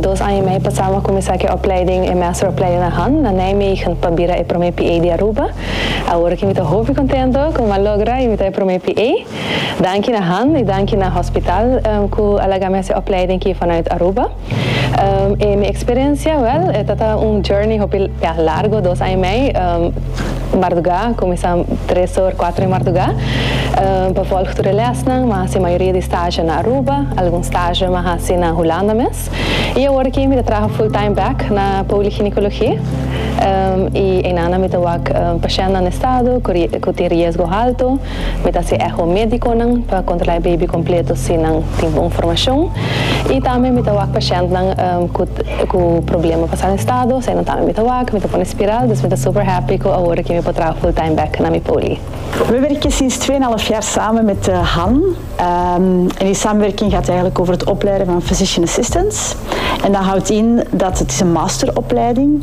Dos aña i mei pasá mi a kuminsá ku e opleiding, e meesteropleiding na Hann, na Nijmegen, pa bira e promé PA di Aruba. Awor aki mi ta hopi kontento ku mi a logra i mi ta e promé PA. Danki na Hann i danki na hospitaal ku a laga mi hasi e opleiding aki vanuit Aruba. E mi experiencia? Wel, e tabata un journey hopi bia largo, dos aña y mei marduga, cuminsa tres or, cuatro di marduga, pa volg tur e lesnan. Mi a haci mayoria di stage na Aruba, algun stage mi a haci na Hulanda mes, y awor aki mi ta traha full time back na poligynecology, y einanan mi ta wak pacientnan estado cu tin riesgo halto. Mi ta haci echo médiconan pa controla e baby completo si nan tin bon formacion y tambe mi ta wak pacientnan cu problema pa sal en estado, esey nan tambe mi ta wak, mi ta pone spiral, dus mi ta super happy cu awor aki mi por traha full time bek na mi poli. Mi werk aki sinds twee en half jaar samen met Han en die samenwerking gaat eigenlijk over het opleiden van physician assistants en dat houdt in dat het is een master opleiding.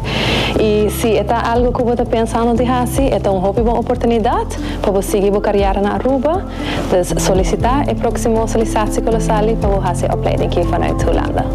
I si e ta algu ku bo ta pensando di hasi, e ta un hopi bon oportunidat pa bo sigui bo kariera na Aruba. Dus solisitá e próksimo solisasikolosali pa bo hasi e opleiding aki vanuit Hulanda.